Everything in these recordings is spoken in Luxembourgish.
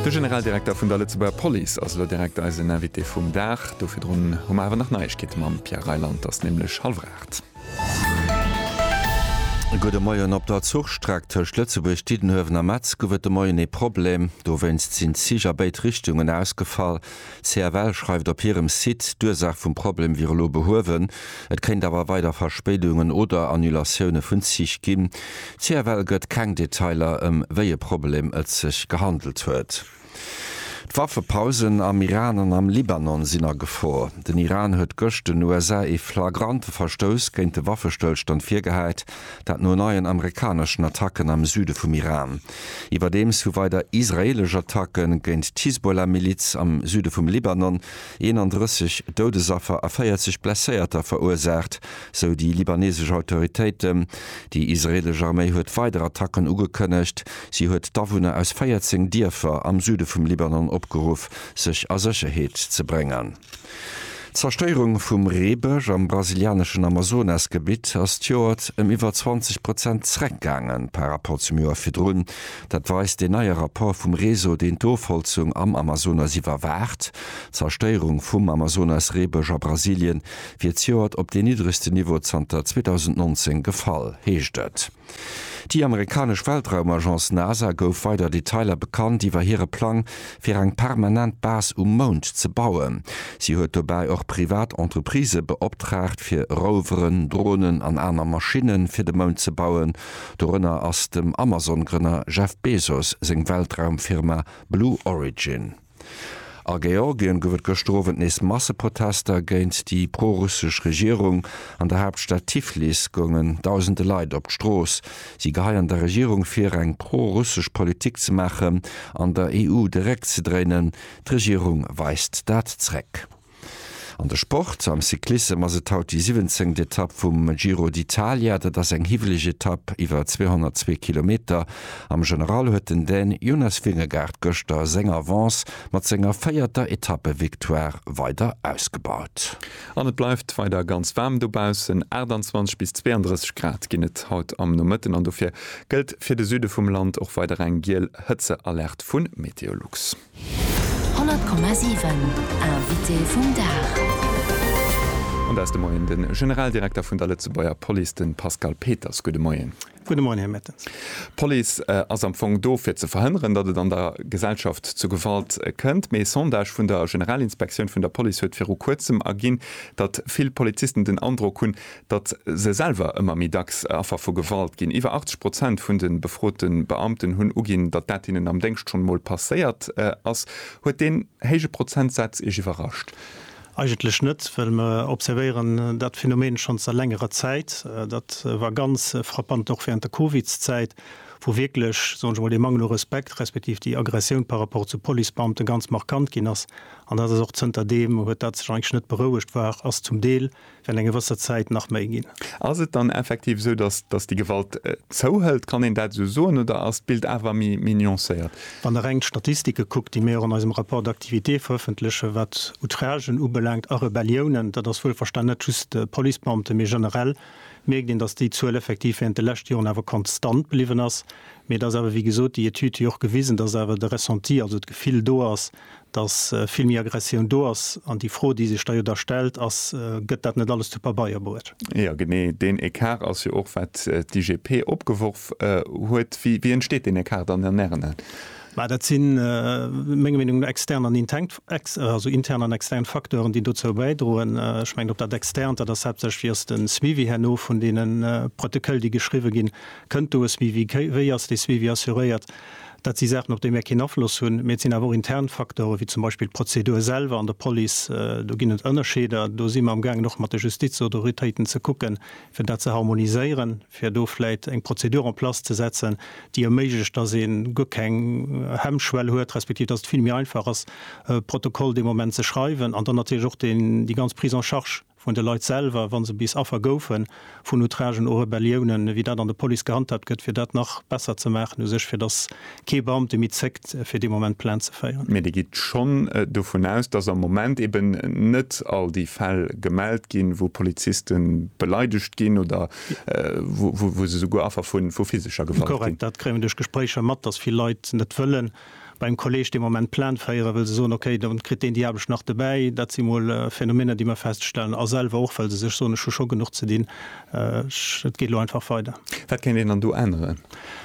De Generaldirekter vun der Lëtzebuerger Police ass elo direkt eisen Invité vum Dag. Do virdrun hu mer awer nach Neiegkeete mam Pierre Reyland. Et ass nämlech hallwer aacht. E gudde Moien. Op der Zuchstreck tëscht Lëtzebuerg, Diddenhuewen a Metz gouf et de Moien ee Problem. Dowéinst sinn d'Zich a béid Richtungen ausgefall. CFL schreift op hirem Site, d'Ursaach vum Problem wier elo behuewen, et kéint awer weider Verspéidungen oder Annulatioune vun Zich ginn. CFL gëtt keng Detailer, ëm wéi e Problem et sech gehandelt huet. D'Waffepausen am Iran an am Libanon sinn a Gefor. Den Iran huet gëscht den USA ee flagrante Verstouss géint de Waffestëllstand virgehäit. Dat no neien amerikaneschen Attacken am Süde vum Iran. Iwwerdeems hu weider israeelesch Attacke géint d'Hisbollah-Miliz am Süde vum Libanon 31 Doudesaffer a 40 Blesséierter verursaacht, sou déi libanesesch Autoritéiten. Déi israeelesch Arméi huet weider Attacken ugekënnegt. Si huet d'Awunner aus 14 Dierfer am Süde vum Libanon opgeruff, sech a Sécherheet ze bréngen. D'Zerstéierung vum Reebësch am brasilianeschen Amazonasgebitt ass d'Joert ëm iwwer 20 Prozent zereckgaangen par rapport zum Joer virdrun. Dat weist deen neie Rapport vum Réseau, deen d'Ofholzung am Amazonas iwwerwaacht. D'Zerstéierung vum Amazonas-Reebësch a Brasilien wier zejoert op deen niddregsten Niveau zanter 2019 gefall, heescht et. Déi amerikanesch Weltraumagence NASA gouf weider Detailer bekannt iwwer hire Plang, fir eng permanent Base um Mound ze bauen. Si huet dobäi och privat Entreprisë beoptraagt, fir Roveren, Dronen an aner Maschinne fir de Mound ze bauen. Dorënner ass dem Amazon-Grënner Jeff Bezos seng Weltraumfirma Blue Origin. A Georgien gouf et gëschter Owend nees Masseprotester géint déi pro-russesch Regierung. An der Haaptstad Tiflis goungen dausende Leit op d'Strooss. Si geheien der Regierung vir, eng pro-russesch Politik ze maachen an der EU de Réck ze dréinen. D'Regierung weist dat zréck. An de Sport, Am Cyclissem ass et haut déi siwwenzéngt Etapp vum Giro d'Italia. Dat ass eng hiwweleg Etapp iwwer 202 Kilometer. Am General huet den Dän Jonas Vingegaard gëschter seng Avance mat senger véierter Etappevictoire weider ausgebaut. An et bleift weider ganz waarm dobaussen, 28 bis 32 Grad ginn et haut am Nomëtten an dofir gëllt fir de Süde vum Land och weider eng giel Hëtzealerte vu Meteolux. 100,7 Invité vum Dag. An dat ass de Moien de Generaldirekter vun der Lëtzebuerger Police, de Pascal Peters. Gudde Moien. Gudde Moien, Här Mertens. D'Police ass am Fong do, fir ze verhënneren, datt et an der Gesellschaft zu Gewalt kënnt. Mee e Sondage vun der Generalinspektioun vun der Police huet viru Kuerzem erginn, datt vill Polizisten den Androck hunn, datt se selwer ëmmer méi dacks Affer vu Gewalt ginn, iwwer 80 Prozent vun de befrote Beamten hunn uginn, datt dat hinnen am Déngscht schonn emol passéiert ass. Huet deen héije Prozentsaz Iech iwwerrascht? Eigentlech net, well mer observéieren dat Phänomen schonn a längerer Zäit. Dat war ganz frappant och während der Covidszäit, wou wierklech, soen ech emol, dee Mangel u Respekt, respektiv déi Aggressioun par rapport zu Policebeamte ganz markant ginn ass. An dat ass och zënter deem huet dat sech eigentlech net berouegt, war, ass zum Deel, Well eng gewësser Zäit nach méi ginn. Ass et dann effektiv esou, datt, datt déi Gewalt zouhëlt? Kann een dat esou soen oder ass d'Bild awer méi, méi nuancéiert? Wann Der reng d'Statistike kuckt, déi mir och an eisem Rapport d'activité verëffentlechen, wat Outragen ubelaangt a Rebelliounen, dat ass wuelverstanen net just Policebeamte, mee generell, mierkt een, datt déi Zuel effektiv während de leschte Joren awer konstant bliwwen ass. Mee et ass awer, wéi gesot, déi Etüd huet jo och gewisen, datt awer de Ressenti, also d'Gefill do ass, datt vill méi Aggressioun do ass. An déi Fro, déi sech da jo da stellt, ass, Gëtt dat net alles zu Pabeier bruet? Jo, genee deen Ecart ass jo och, wat d'IGP opgeworf huet. Wéi entsteet deen Ecart dann an Ären Aen? Mä dat si menger Meenung no extern an inteng, also intern an extern Facteuren, déi dozou bäidroen. Ech mengen, op dat Externt, dat ass haaptsächlech, Wéi ass de Suivi herno vun deene Protoköll, déi geschriwwe ginn? Kënnt do e Suivi? Wéi ass dee Suivi assuréiert? Dat si Saachen, op déi mär keen Afloss hunn. Mee et sinn awer och intern Faktore wéi zum Beispill d'Prozedur selwer an der Police. Do ginn et Ënnerscheeder. Do si mer amgaangen och mat de Justizautoritéiten ze kucken, fir dat ze harmoniséieren, fir do vläit eng Prozedur en place ze setzen, déi erméiglecht, dass ee guer keng Hemmschwell huet, respektiv dass et vill méi einfach ass, e Protokoll dee Moment ze schreiwen an dann natierlech och déi ganz Prise en charge, vun de Leit selwer, wa se bis Affer goufen vun Outragen u Rebelliounen, wéi dat an der Police gehandhaabt gëtt, fir dat nach besser ze maachen u sech, fir dass kee Beamte méi zéckt, fir dee Moment Plainte ze féieren. Mee Dir gitt schonn dovun aus, dass am Moment eben net all déi Fäll gemellt ginn, wou Poliziste beleidegt ginn oder wou se souguer Affer vu physescher Gewalt ginn? Korrekt. Dat kréie mer duerch Gespréicher mat, dass vill Leit net wëllen. beim Kolleg dee Moment Plainte féieren, wëll se soen, okay, do kritt deen déi Aarbecht nach dobäi. Dat si mol Phänomener, déi mer feststellen, a selwer och, well se sech soen, ech hu scho genuch ze dinn, ech, et geet elo einfach weider. Wat kéint een dann do änneren?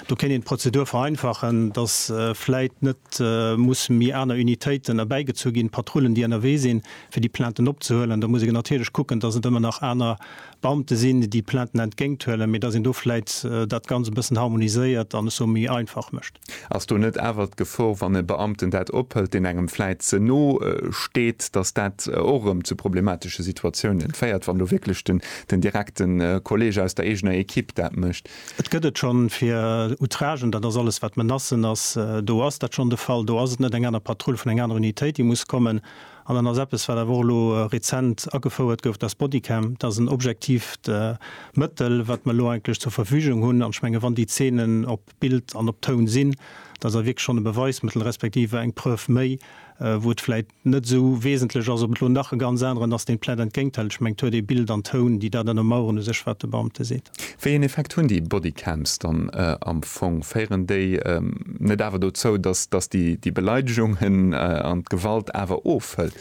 Do kéint een d'Prozedur vereinfachen, dass vläit net muss méi aner Unitéiten erbäigezu ginn, Patrullen, déi ënnerwee sinn, fir déi Plainten opzehuelen. Da muss een natierlech kucken, dass et ëmmer nach aner Beamte sinn, déi Plainten entgéinthuelen, mee dass een do vläit dat Ganz e bëssen harmoniséiert an ech soe méi einfach mécht. Ass do net awer d'Gefor, wann e Beamten dat ophëlt, deen engem vläit ze no steet, datt dat och erëm zu problematesche Situatiounen féiert, wann do wierklech den direkte Kolleg aus der eegener Ekipp dat mécht? Et gëtt et schonn fir Outragen, dat ass alles wat Menacen ass, do ass dat schonn de Fall. Do ass et net eng aner Patrull vun enger aner Unitéit, déi muss kommen. An dann ass eppes, wat awer och elo rezent agefouert gouf, dass d'Bodycam, dat ass en objektiivt Mëttel, wat mer elo eigentlech zur Verfügung hunn. An ech menge wann déi Zeenen op Bild an op Toun sinn, da ass et wierklech schonn e Beweismëttel respektiv eng Preuve méi, wou et vläit net esou wesentlech ass, ob et elo nach e ganz aneren ass, deen d'Plätt entgéint hält. Ech mengen, d'Tour de Bild an Toun, déi dat ënnermaueren, u sech, wat de Beamte seet. Wéi een Effekt hunn déi Bodycams dann am Fong? Féieren déi net awer dozou, dass déi Beleidegungen an d'Gewalt awer ofhëlt?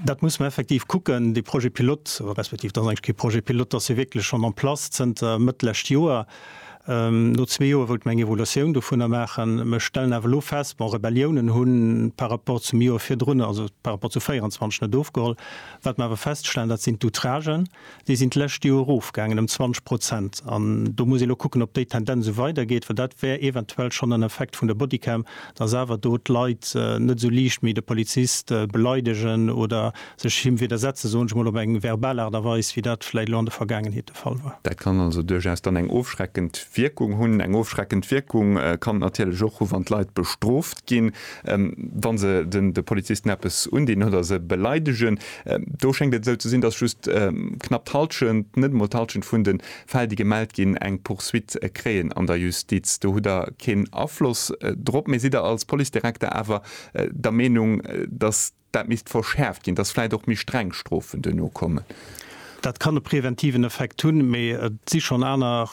Dat muss mer effektiv kucken. Dee Projet pilote, respektiv dat ass eigentlech kee Projet pilote, dat ass jo wierklech schonn en place zënter Mëtt d'lescht Joer. No zwee Joer wëlte mer eng Evaluatioun dovunner maachen. Mer stellen awer elo fest, Bon, Rebelliounen hu par rapport zum Joer virdrun, also par rapport zu 24, net ofgeholl. Wat mer awer feststellen, dat sinn d'Outragen. Déi sinn d'lescht Joer erofgaangen ëm 20 Prozent. An do muss ee lo kucken, ob déi Tendenz esou weidergeet, well dat wär eventuell schonn en Effekt vun der Bodycam, dass awer do d'Leit net esou liicht méi de Polizist beleidegen oder sech him widdersetzen, soen ech emol op eng verbal Aart a Weis, wéi dat vläicht elo an der Vergaangenheet de Fall war. Dat kann also duerchaus dann eng ofschreckend Wierkung hunn. Eng ofschreckend Wierkung kann et natierlech och hu wann d'Leit bestrooft ginn, wa se de Polizisten eppes undinn oder se beleidegen. Do schéngt et esou ze sinn, datt just knapp d'Hallschent, net emol d'Hallschent vun de Fäll, déi gemellt ginn, eng Poursuite kréien an der Justiz. Do hutt Der keen Afloss drop. Mee sidd Der als Policedirekter awer der Meenung, datt dat misst verschäerft ginn, datt vläicht och méi streng Strofen duerno kommen? Dat kann e preventiven Effekt hunn. Mee et si schonn aner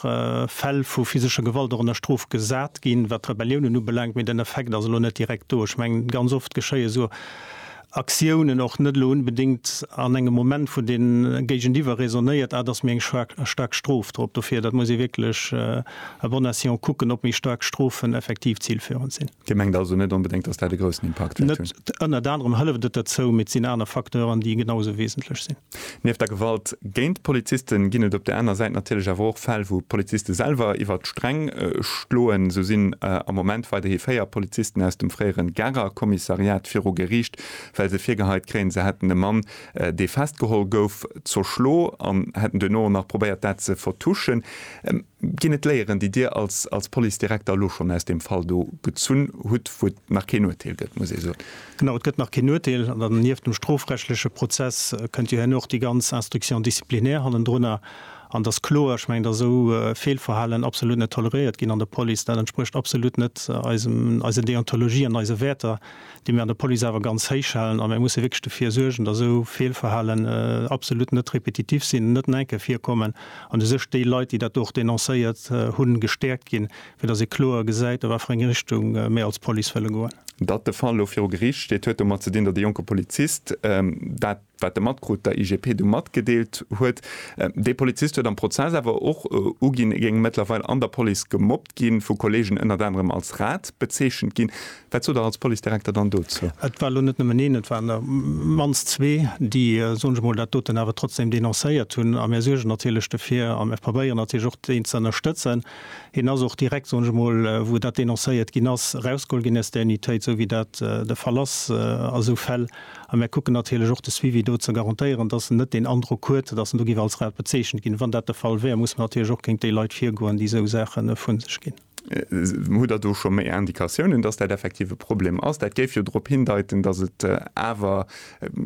Fäll vu physescher Gewalt och ënner Strof gesat ginn, wat d'Rebelliounen ubelaangt. Mee den Effekt ass elo net direkt do. Ech mengen, ganz oft geschéie sou Aktiounen och net elo unbedéngt an engem Moment, wou de Géigeniwwer raisonnéiert, ah, da ass méi eng staark Strof drop. Dofir, dat muss ee wierklech à bon escient kucken, ob méi staark Strofen effektiv zilführend sinn. Dir mengt also net onbedéngt, dass dat e groussen Impakt wäert hunn? Net. Ënnert anerem hëlleft et derzou, mee et sinn aner Facteuren, déi genau esou wesentlech sinn. Nieft der Gewalt géint d'Poliziste ginn et op der aner Säit natierlech awer och Fäll, wou d'Poliziste selwer iwwer d'Sträng schloen. Esou sinn am Moment weiderhi véier Polizisten aus dem fréiere Garer Kommissariat viru Geriicht, well se virgeheit kréien, se hätten e Mann, dee festgeholl gouf, zerschlo an hätten duerno och nach probéiert, dat ze vertuschen. Ginn et Léieren, déi Dir als als Policedirekter elo schonn aus deem Fall do gezunn hutt, wou et nach keen Urteel gëtt, muss ee soen? Genau, et gëtt nach keen Urteel. An dann nieft dem strofrechtleche Prozess kënnt jo herno och déi ganz Instruction disciplinaire hannendrunner. An et ass kloer, ech mengen, datt esou Feelverhalen absolut net toleréiert ginn an der Police. Dat entsprécht absolut net eisem eisen Deontologie an eise Wäerter. déi mir an der Police awer ganz héich halen, a mir musse wierklech dofir suergen, datt esou Feelverhalen absolut net repetitiv sinn, net no eng Kéier virkommen an u sech déi Leit, déi dat do och denoncéiert hunn, gestäerkt ginn, fir datt ee kloer gesäit, a wat fir eng Richtung mir als Police wëlle goen. Datt de Fall elo viru Geriicht steet, huet domat ze dinn, datt e jonke Polizist dat Wat de Matkrut der IGP du matgedeelt huet. Dee Polizist huet am Prozess awer och uginn, e géing mëttlerweil an der Police gemobbt ginn, vu Kolleegen ënnert anerem als Rat bezeechent ginn. Wat sot Der als Policedirekter dann dozou? Et war elo net nëmmen een, et waren der op d'mannst zwee, déi, soen ech mol, dat doten awer trotzdeem denoncéiert hunn. A mir suergen natierlech dofir a mir probéieren natierlech och deen ze ënnerstëtzen. Hien ass och direkt, soen ech mol, wou dat denoncéiert ginn ass, erausgeholl ginn aus der Unitéit, esou wéi dat de Fall ass a sou Fäll. A mir kucken natierlech och de Suivi do ze garantéieren, dass en net deen Androck huet, dass en do géif als Raub bezeechent ginn. Wann dat de Fall wär, muss mer natierlech och géint déi Leit virgoen, déi esou Saache vu sech ginn. Hutt Der do scho méi Indikatiounen, dass dat effektiv e Problem ass? Dat géif jo drop hindeiten, dass et awer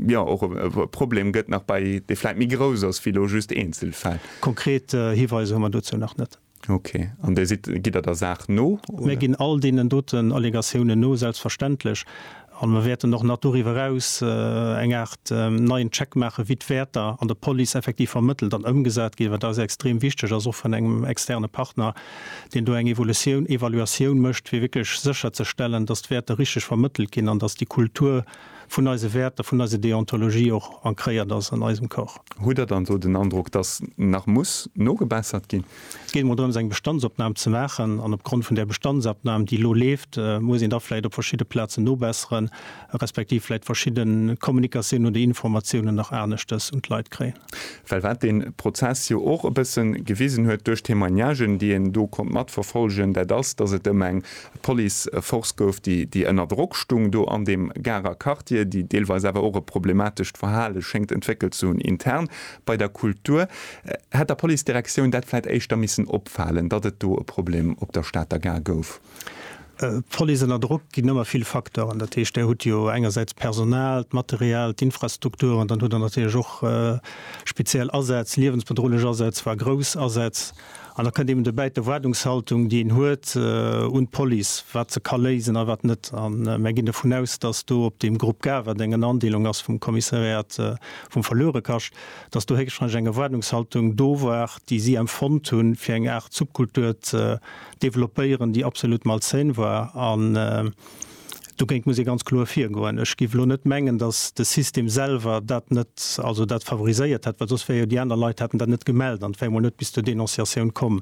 jo och e Problem gëtt nach bei, dee vläicht méi grouss ass wéi elo just Eenzelfäll. Konkret Hiweiser hu mer dozou nach net. Ok. An Dir sidd, gitt Der der Saach no, Mir oder? ginn all deenen doten Allegatiounen no, selbstverständlech. A mir wäerten och nach doriwwer eraus eng Aart neien Check maachen, wéi d'Wäerter an der Police effektiv vermëttelt an ëmgesat ginn, wat eis jo extrem wichtig ass, och vun engem externe Partner, deen do eng Evolutioun, Evaluatioun mécht, fir wierklech sécherzestellen, dass d'Wäerter richtig vermëttelt ginn an dass déi Kultur, vun eise Wäerter, vun eiser Deontologie och ancréiert ass an eisem Corps. Hutt Der dann do den Androck, dass nach muss nogebessert ginn? Et geet emol drëms, eng Bestandsopnam ze maachen. An opgrond vun där Bestandsopnam, déi elo leeft, muss een da vläicht op verschidde Plazen nobesseren, respektiv vläicht verschidde Kommunikatiounen oder Informatiounen nach aneschtes un d'Leit kréien. Well wat dee Prozess jo och e bësse gewisen huet, duerch d'Témoignagen, déi een do konnt matverfolgen, dat ass, datt et ëm eng Policeforce gouf, déi ënner Drock stung do an deem Garer Quartier, déi deelweis awer och e problematescht Verhale schéngt entwéckelt ze hunn intern bei der Kultur, hätt der Policedirektioun dat vläit éischter missen opfalen, datt et do e Problem op der Stater Gare gouf. D'Police ënner Drock ginn ëmmer vill Facteuren. Dat heescht, Der hutt jo engersäits d'Personal, d'Material, d'Infrastrukturen. Dann hutt Der natierlech och speziell Asätz, liewensbedrohlech Asätz, voire grouss Asätz. An da kënnt eben dobäi d'Erwaardungshaltung, déi een huet un d'Police, wat se ka léisen a wat net. A mär ginn dovun aus, dass do op deem Grupp Gare, wat eng Ënnerandeelung ass vum Kommissariat vum Verluerekascht, dass do héchstrangeg eng Erwaardungshaltung do war, déi si empfonnt hunn, fir eng Aart Subkultur ze developpéieren, déi absolut malsain war, an dogéint muss ee ganz kloer virgoen. Ech géif elo net mengen, datt de System selwer dat net, also dat favoriséiert hätt, well soss wär jo, déi aner Leit hätten dat net gemellt an et wär emol net bis zur Denonciatioun komm.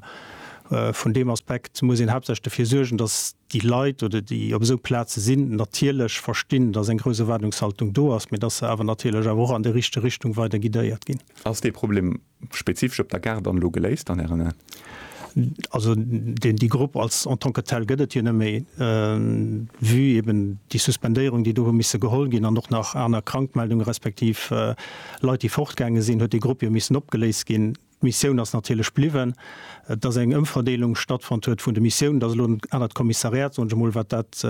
Vun deem Aspekt muss een haaptsächlech dofir suergen, datt déi Leit, oder déi op esou Plaze sinn, natierlech verstinn, datt eng grouss Erwaardungshaltung do ass, mee datt se awer natierlech awer och an déi richteg Richtung weider guidéiert ginn. Ass dee Problem Spezifesch op der Gare dann elo geléist an Ären Aen? Also deen déi Grupp als en tant que tel gëtt et jo net méi, vue eben déi Suspendéierung, déi do hu misse geholl ginn an och nach aner Krankmeldunge respektiv Leit, déi fortgaange sinn, huet dee Grupp jo missen opgeléist ginn. D'Missioun ass natierlech bliwwen. Et ass eng Ëmverdeelung stattfonnt huet vun de Missiounen. Dat ass elo en anert Kommissariat, soen ech emol, wat dat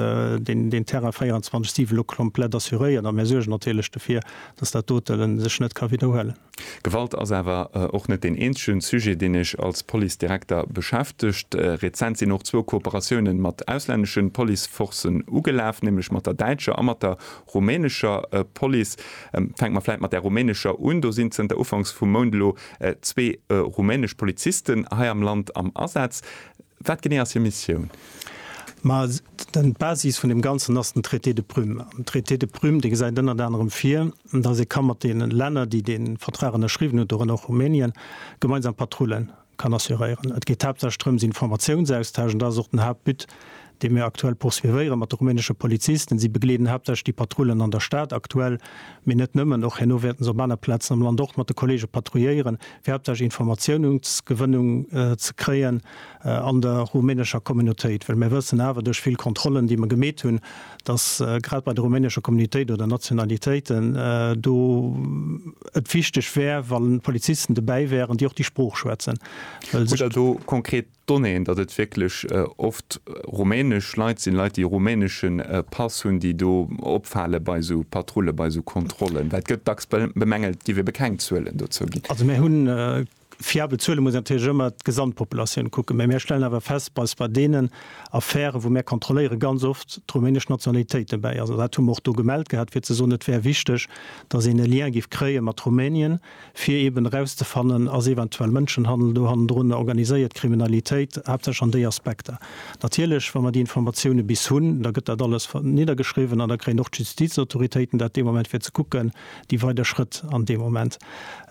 deen deen Terrain 24, 7 elo komplett assuréiert. A mir suergen natierlech dofir, dass dat dote sech net ka widderhuelen. Gewalt ass awer och net deen eenzegen Sujet, deen iech als Policedirekter beschäftegt. Rezent sinn och zwou Kooperatiounen mat auslänneschen Policeforcen ugelaf, nämlech mat der däitscher a mat der rumänescher Police. Fänke mer vläit mat där rumänescher un. Do sinn zënter Ufanks vum Mount elo zwee rumänesch Polizisten hei am Land am Asaz. Wat genee ass hir Missioun? Ma d'Basis vun deem Ganzen ass den Traité de Prüm. An den Traité de Prüm, dee gesäit ënnert anerem vir, dass ee ka mat deene Länner, déi dee Vertrag ënnerschriwwen hunn, dorënner och Rumänien, gemeinsam Patrullen kann assuréieren. Et geet haaptsächlech drëms, Informatiounsaustausch, an dat ass och den Haaptbut, dee mir aktuell poursuivéieren mat de rumänesche Polizisten. Si begleeden haaptsächlech déi Patrullen an der Stad aktuell, mee net nëmmen, och herno wäerten se op aner Plazen am Land och mat de Kollege patrouilléieren, fir haaptsächlech Informatiounungsgewënnung ze kréien an der rumänescher Communautéit. Well mir wëssen awer duerch vill Kontrollen, déi mer gemeet hunn, dass grad bei de rumänesche Communitéiten oder Nationalitéiten do et wichteg wär, wa Polizisten dobäi wären, déi och déi Sprooch schwätzen. Hutt Der do konkret Donnéeën, datt et wierklech oft rumänesch Leit sinn, Leit, déi e rumänesche Pass hunn, déi do opfale bei esou Patrullen, bei esou Kontrollen? Well et gëtt dacks bemängelt, et géif ebe keng Zuelen dozou ginn. Also mir hunn Fiabel Zuele muss een natierlech ëmmer d'Gesamtpopulatioun kucken, mä mär stellen awer fest, dass bei deenen Affären, wou mär kontrolléieren, ganz oft d'rumänesch Nationalitéit dobäi ass. An dat hu mer och do gemellt gehat, fir ze soen, et wär wichteg, dass een e Lien géif kréie mat Rumänien, fir eeben erauszefannen, Ass eventuell Mënschenhandel do hannendrun, organiséiert Kriminalitéit, haaptsächlech an déi Aspekter? Natierlech, wa mer déi Informatioune bis hunn, da gëtt dat alles niddergeschriwwen an da kréien och d'Justizautoritéiten dat dee Moment, fir ze kucken, déi weider Schrëtt an deem Moment.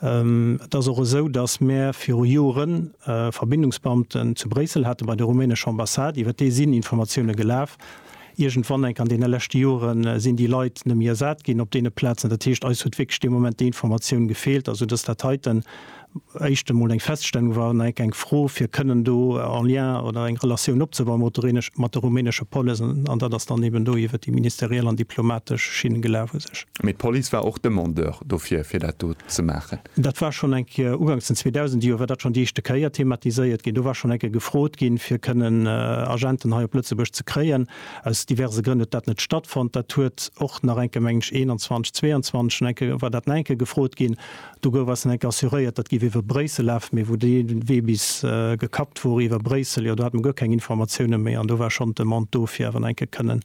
Et ass och esou, datt mär viru Joren Verbindungsbeamten zu Bréissel hate bei der rumänescher Ambassade, iwwer déi sinn Informatioune gelaf. Iergendwann, enk an deene leschte Jore sinn déi Leit net méi ersat ginn op deene Plazen. Dat heescht, eis huet wierklech dee Moment déi Informatioun gefeelt, esou datt dat heiten éischt emol eng Feststellung war, enk eng Fro, fir kënnen do en Lien oder eng Relatioun opzebauen mat der rumänesch, mat der rumänesche Police, an dat ass dann eben do iwwert déi ministeriell an diplomatesch Schinn gelaf u sech. Mee d'Police war och Demandeur dofir, fir dat do ze maachen? Dat war schonn eng Kéier, ugangs den 2000 Joer war dat schonn déi éischte Kéier thematiséiert ginn. Do war schonn eng Kéier gefrot ginn, fir kënnen Agenten hei op Lëtzebuerg ze kréien. Aus diverse Grënn huet dat net stattfonnt. Dat huet och nach eng Kéier, mengen ech 21, 22, schonn eng Kéier war dat nach eng Kéier gefrot ginn. Do gouf eis dann enk assuréiert, dat géif iwwer Bréissel lafen, mee wou dee Wee bis gekappt wor iwwer Bréissel, jo do hat mer guer keng Informatiounen méi an do war schonn d'Demande do fir awer nach enk e kënnen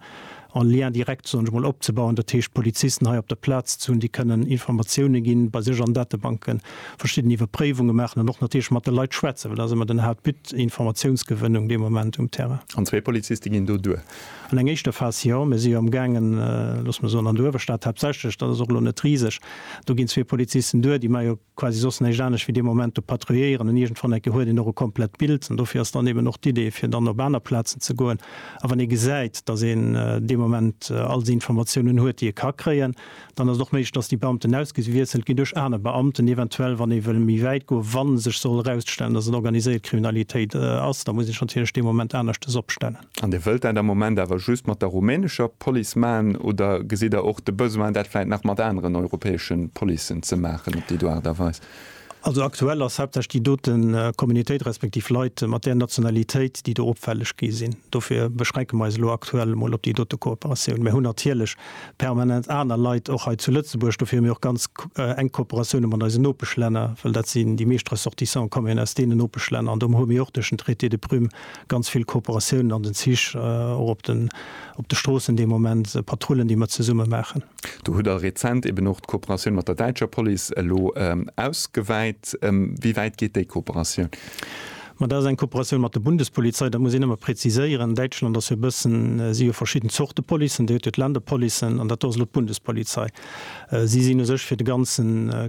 en Lien direct, soen ech emol, opzebauen, dat heescht d'Polizisten hei op der Plaz ze hunn, déi kënnen Informatiounen ginn, bei sech an Datebanken verschidden Iwwerpréiwunge maachen an och natierlech mat de Leit schwätzen, well dat ass ëmmer den Haaptbut, Informatiounsgewënnung dee Moment um Terrain. An zwee Poliziste ginn do duer. An eng éischter Phas, jo. Mir si jo amgaangen, looss mer soen, an der Uewerstad haaptsächlech, dat ass och elo net riseg, do ginn zwee Polizisten duer, déi mar jo quasi soss näischt anescht wéi dee Moment do patrouilléieren. An iergendwann enke huet een och e komplett Bild. An dofir ass dann eben och d'Idee, fir dann op aner Plazen ze goen. A wann ee gesäit, dass een dee Moment all déi Informatiounen huet, déi e ka kréien, dann ass et och méiglech, dass déi Beamten ausgewiesselt ginn duerch aner Beamten, eventuell, wann ee wëll méi wäit goen, wa sech soll erausstellen, dass et organiséiert Kriminalitéit ass. Da muss ee sech natierlech dee Moment aneschtes opstellen. An Dir wëllt dat am Moment awer just mat der rumänescher Police maachen, oder gesitt Der och de Besoin, dat vläicht nach mat aneren europäesche Policen ze maachen op déi do Aart a Weis? Also aktuell ass haaptsächlech déi dote Communautéit, respektiv Leit mat där Nationalitéit, déi do opfälleg gi sinn. Dofir beschränke mer eis elo aktuell emol op déi dote Kooperatioun. Mir hunn natierlech permanent aner Leit och hei zu Lëtzebuerg. Dofir hu mir och ganz enk Kooperatioune mat eisen Nopeschlänner, well dat sinn, déi meescht Ressortissantë kommen jo aus deenen Nopeschlänner an do hu mir och duerch den Traité de Prüm ganz vill Kooperatiounen an den Zich, och op den, op de Stroossen dee Moment, Patrullen, déi mer zesumme maachen. Do hutt Der rezent eben och d'Kooperatioun mat der däitscher Police elo ausgewäit. Wéi wäit geet déi Kooperatioun? Ma dat ass eng Kooperatioun mat der Bundespolizei. Dat muss een ëmmer präziséieren. Däitschland ass jo e bëssen, si jo verschidden Zorte Policen, déi huet jo d'Länderpolicen an dat do ass elo d'Bundespolizei. Si sinn u sech fir de ganze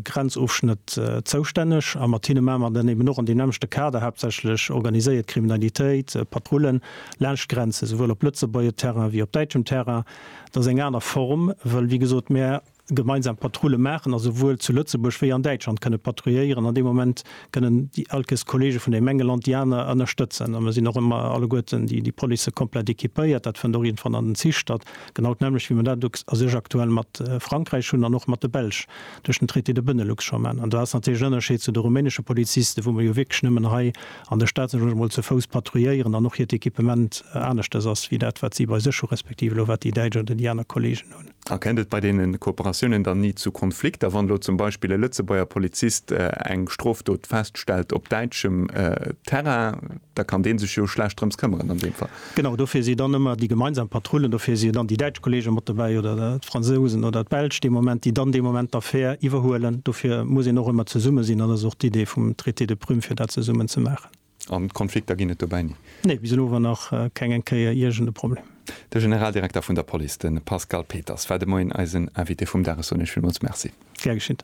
Grenzofschnëtt zoustänneg a mat hinne maache mer dann eben och an deem nämmlechte Kader haaptsächlech organiséiert Kriminalitéit, Patrullen laanscht d'Grenze, souwuel op Lëtzebuerger Terrain wéi op däitschem Terrain. Dat ass eng aner Form, well, wéi gesot, mer gemeinsam Patrulle maachen a souwuel zu Lëtzebuerg wéi an Däitschland kënne patrouilléieren. An deem Moment kënnen déi elkes Kollege vun deem enge Land déi aner ënnerstëtzen. A mer sinn och ëmmer alleguerten déi Policë komplett equipéiert. Dat fënnt och iergendwann an den Zich statt. Genau d'nämmlecht, wéi mer dat elo a sech aktuell mat Frankräich hunn an och mat de Belsch duerch den Traité de Benelux scho maachen. An do ass natierlech en Ënnerscheed zu de rumänesche Polizisten, wou mer jo wierklech nëmmen hei an der Stad, sot ech emol, zu Fouss patrouilléieren an och hiert Equipement aneschters ass wéi dat, wat si bei sech hunn, respektiv elo wat déi Däitsch oder déi aner Kolleegen hunn. A kennt et bei deene Kooperatiounen dann ni zu Konflikter, wann elo zum Beispill e Lëtzebuerger Polizist eng Strofdot feststellt op däitschem Terrain? Da kann dee sech jo schlecht drëms këmmeren an deem Fall. Genau, dofir si dann ëmmer déi gemeinsam Patrullen, dofir si dann déi däitsch Kollege mat dobäi oder d'Fransousen oder d'Belsch dee Moment, déi dann dee Moment d'Affär iwwerhuelen. Dofir muss een och ëmmer zesumme sinn an dat ass och d'Idee vum Traité de Prüm, fir dat zesummen ze maachen. A Konflikter ginn et dobäi ni? Nee, bis elo war nach keng eng Kéier iergend e Problem. De Generaldirekter vun der Police, de Pascal Peters, war de Moien eisen Invité vum Dag. Ech soen Iech villmools Merci. Gär geschitt.